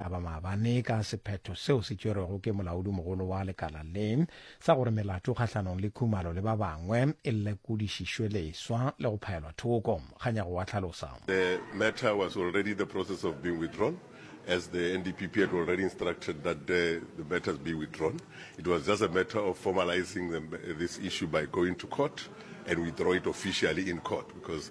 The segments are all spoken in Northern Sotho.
a ba maabane ka sephetho seo se tšwerwego ke molaodimogolo wa lekala le sa gore melato kgahlanong le Khumalo le ba bangwe e lekodišišwe leswa le go phaelwa thoko. Kganyago wa hlalosa. The matter was already the process of being withdrawn as the NDPP had already instructed that the, the matters be withdrawn. It was just a matter of formalizing the, this issue by going to court and withdraw it officially in court because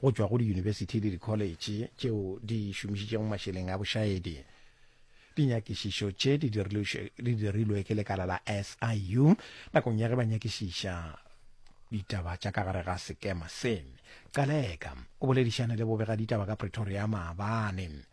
go tšwa go diyunibesithi le dikholetšhe tšeo di šomišitšego mašeleng a bošaedi. Dinyakišišo tše di dirilwe ke lekala la SIU nakong ya ge ba nyakišiša ditaba tša ka gare ga sekema se. Qaleka o boledišane le bobegaditaba ka Pretoria maabane.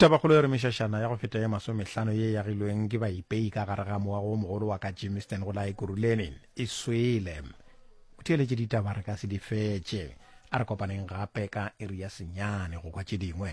Tabakgolo e re mešašana ya go feta ye masomehlano ye yagilweng ke baipei ka gare ga moago o mogolo wa ka Jimiston go la Ekurhuleni e swele. O theeletše ditaba re ka se di fetše. A re kopaneng gape ka iri ya senyane go kwa tše dingwe.